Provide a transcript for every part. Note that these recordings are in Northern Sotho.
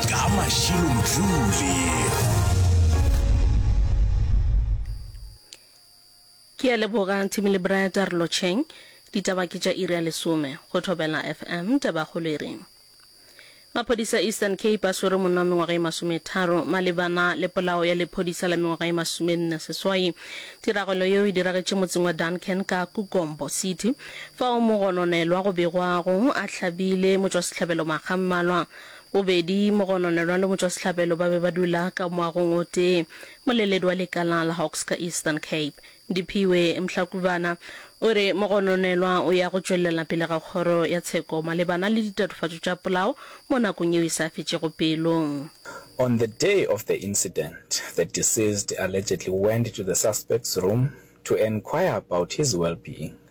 Ka Mashilo Mdluli. Ke a leboga Thimi le Brad a re lotšheng. Ditaba ke tša iri ya lesome go Thobela FM. Tabakgolo e reng? Maphodisa Eastern Cape a swere monna wa mengwaga ye masometharo malebana le polao ya lephodisa la mengwaga ye masomenne seswai. Tiragalo yeo e diragetše motseng wa Duncan ka Kukombo City fao mogononelwa go begwago a hlabile motšwasehlabelo makga mmalwa. Bobedi Mogononelwa le Motšwasehlabelo ba be ba dula ka moagong o tee, moleledi wa lekala la Hawks ka Eastern Cape, Diphiwe Mhlakubana, o re Mogononelwa o ya go tšwelela pele ga kgoro ya tsheko malebana le ditatofatšo tša polao mo nakong yeo e sa fetšego pelo. On the day of the incident, the deceased allegedly went to the suspect's room to enquire about his well-being.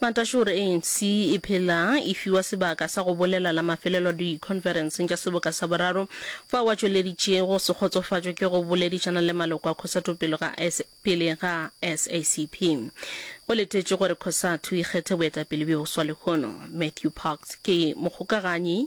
Matashe o re ANC e phela e fiwa sebaka sa go bolela la mafelelo dikhonferenseng tša seboka sa boraro, fao a tšweleditšego go se kgotsofatšwe ke go boledišana le maloko a Cosatu pele ga pele ga SACP. Go letetšwe gore Cosatu e kgethe boetapele bjo boswa lehono. Matthew Parks ke mokgokaganyi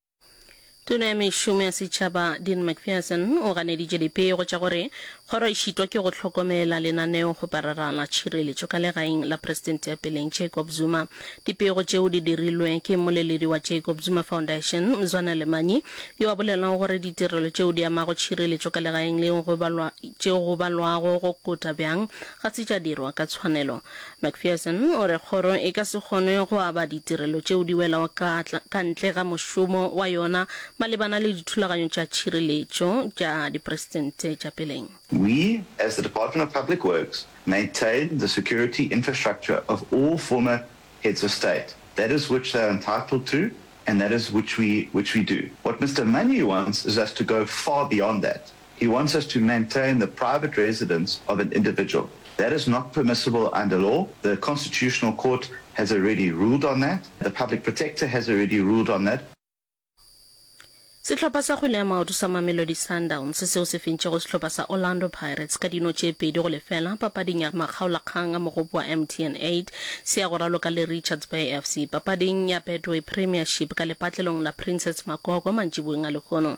Tona ya Mešomo ya Setšhaba Dean McPherson o ganeditše dipego tša gore kgoro e šitwa ke go hlokomela lenaneo go parara la tšhireletšo ka legaeng la Presidente ya peleng Jacob Zuma. Dipego tšeo di dirilwe ke mmoleledi wa Jacob Zuma Foundation, Mzwana Lemanyi, yo a bolelago gore ditirelo tšeo di amago tšhireletšo ka legaeng leo go balwa, tšeo go balwago go kota bjang Ga se tša dirwa ka tshwanelo. McPherson o re kgoro e ka se kgone go aba ditirelo tšeo di welago ka ka ntle ga mošomo wa yona malebana le dithulaganyo tša tšhireletšo tša diperesente tša peleng. We, as the Department of Public Works, maintain the security infrastructure of all former Heads of State. That is which they are entitled to and that is which we which we do. What Mister Money wants is us to go far beyond that. He wants us to maintain the private residence of an individual. That is not permissible under law. The Constitutional Court has already ruled on that. The Public Protector has already ruled on that. Sehlopha sa kgwele ya maoto sa Mamelodi Sundowns seo se fentšego sehlopha sa Orlando Pirates ka dino tše pedi go lefela papading ya makgaolakgang a mogopo wa MTN eight se ya go raloka le Richards Bay FC papading ya Betway Premiership ka lepatlelong la Princess Makoko mantšiboeng a Lehono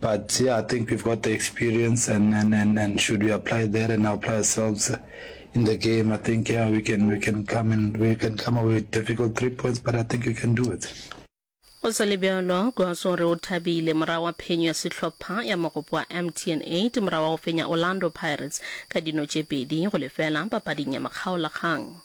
But yeah, I think we've got the experience and and and, and should we apply that and apply ourselves in the game, I think yeah, we can we can come and we can come away with difficult three points, but I think we can do it. Go sa le bjalo, Goss o re o thabile morago wa phenyo ya sehlopha ya mogopo wa MTN 8 morago wa go fenya Orlando Pirates ka dino tše pedi go lefela papading ya makgaolakgang.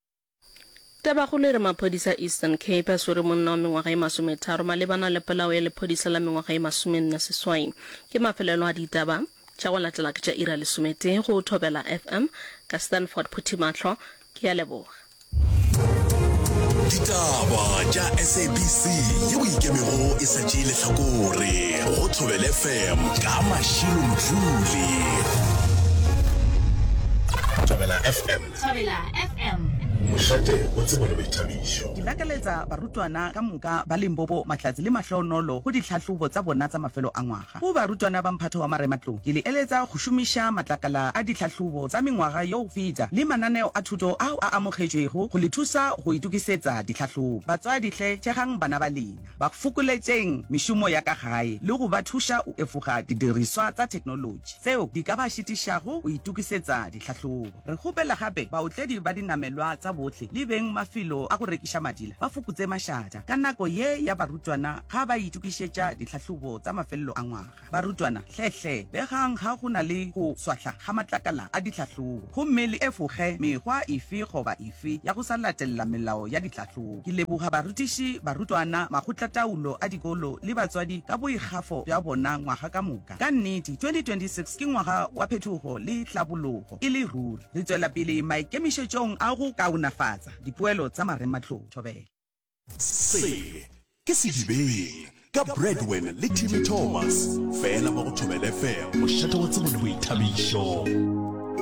Tabakgolo e re maphodisa a Eastern Cape a swere monna wa mengwaga e masometharo malebana le polao ya lephodisa la mengwaga e masomenne seswai. Ke mafelelo a ditaba tša go latela ke tša iri ya lesometee go Thobela FM ka Stanford Phuthimatlho. Ke a leboga. Ditaba tša SABC yeo e ikemego e sa tšee lehlakore go Thobela FM ka Mashilo Mdluli. Thobela FM. Thobela FM. Mošate o tseba le boithabišo. Ke lakaletsa barutwana ka moka ba Limpopo matlatsi le mahloonolo go ditlhahlobo tsa bona tsa mafelo a ngwaga. Go barutwana ba mphato wa marematlou, ke le eletsa go šomiša matlakala a ditlhahlobo tsa mengwaga yo go feta le mananeo a thuto ao a amogetšwego go le thusa go itokisetsa ditlhahlobo. Batswadi hle, thegang bana ba lena, ba fokoletšeng mešomo ya ka gae le go ba thuša go efoga didiriswa tsa theknolotši tseo di ka ba šitišago go itokisetsa ditlhahlobo. Re kgopela gape baotledi ba dinamelwa tsa bohle le beng mafelo a go rekiša madila ba fokotse mašata ka nako ye ya barutwana ga ba itokišetša ditlhahlobo tsa mafelelo a ngwaga. Barutwana, hle-hle begang ga go na le go swahla ga matlakala a ditlhahlobo gomme le efoge mekgwa efe goba efe ya go sa latelela melao ya ditlhahlobo. Ke leboga barutiši, barutwana, makgotlataolo a dikolo le batswadi ka boikgafo bja bona ngwaga ka moka. Ka nnete, 2026 ke ngwaga wa phetogo le tlhabologo e le ruri. Re tšwela pele maikemišetšong a go kaonafatsa dipoelo tsa marematlou. Thobela. Se ke Sedibeng ka Bradwen le Timmy Thomas, fela mo go Thobela FM, mošate wa tsebo le boithabišo.